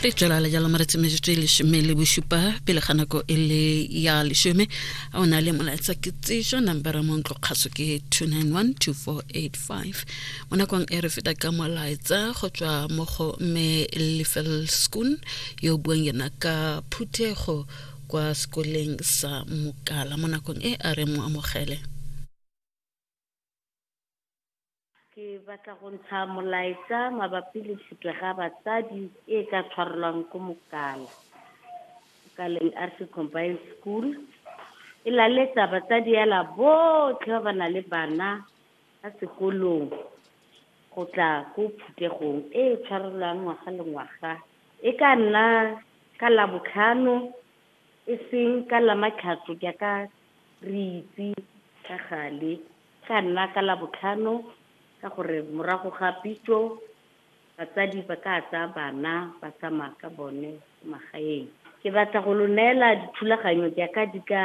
re tswelela jalo maretsi metsotso e lesome le bosupa pele ga nako e le ya lesome a o na le molaetsa ke tseso nambara mo ntlo kgaso ke 2912485 mo nakong e re feta ka molaetsa go tswa mo go mme lefel schoon yo buang yena ka phuthego kwa sekoleng sa mokala mo nakong e a re mo amogele Ke batla go ntsha molaetsa mabapi le tlhokega batsadi e e ka tshwarelwang ko Mokala, Mokaleng Arse Combined School. E laletsa batsadi ela botlhe ba ba nang le bana ba sekolong go tla ko phuthegong e e tshwarelwang ngwaga le ngwaga. E ka nna ka Labotlhano E seng ka Lamatlhatso jaaka re itse ka gale, e tla nna ka Labotlhano ka gore morago ga pitso batsadi ba ka tsaya bana ba tsamaya ka bone ko magaeng. Ke batla go lo neela dithulaganyo jaaka di ka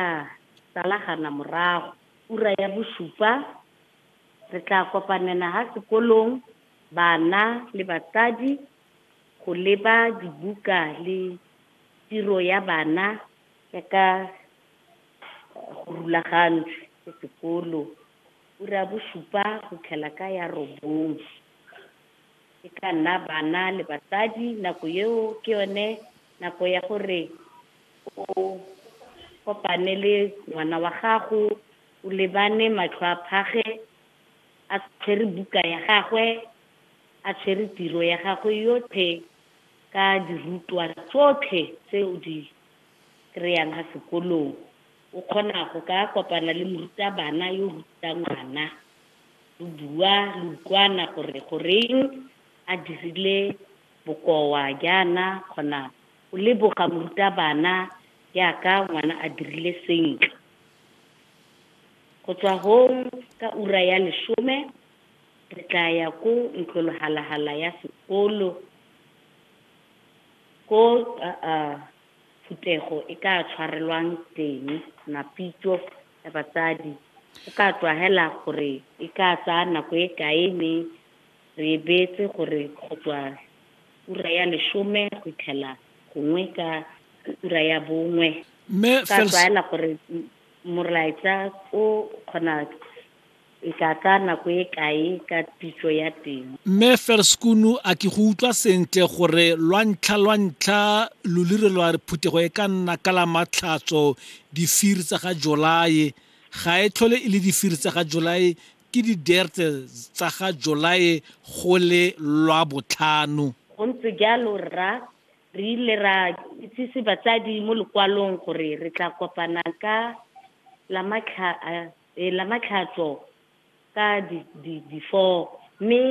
salagana morago. Ura ya bosupa re tla kopanela ha sekolong bana le batsadi go leba dibuka le tiro ya bana jaaka go rulagantswe ke sekolo ura ya bosupa go tlhela ka ya robong. E ka nna bana le batsadi nako eo ke yone nako ya gore o kopane le ngwana wa gago o lebane matlho a phage a tshwere buka ya gagwe A tshwere tiro ya gagwe yotlhe ka dirutwa tsotlhe tse o di kry-ang ka sekolong. O kgona go ka kopana le morutabana yo o rutang ngwana, lo bua, lo utlwana gore goreng a dirile bokoa jaana, kgona go leboga morutabana jaaka ngwana a dirile sentle. Go tswa hong ka ura ya lesome Re tla ya ko ntlolhalahala ya sekolo ko phuthego e ka tshwarelwang teng, mapitso ya batsadi. Go ka tlwagela gore e ka tsaya nako e kae mme re e beetse gore go tswa ura ya lesome go itlhela gongwe ka ura ya bongwe. Mme ka tlwaela gore molaetsa o kgona E tla tsaya nako e kae ka pitso ya teng? Mme Ferskunu, a ke go utlwa sentle gore lwantlha lwantlha lolire lwa re phuthego e ka nna ka la matlhatso difiri tsa ga Jolae ga e tlhole e le difiri tsa ga Jolae ke di derte tsa ga Jolae go le lwa botlhano? Go ntse jalo rra, re ile ra itsise batsadi mo lokwalong gore re tla kopanang ka la matlha a E lama tlhatso ka difoo, mme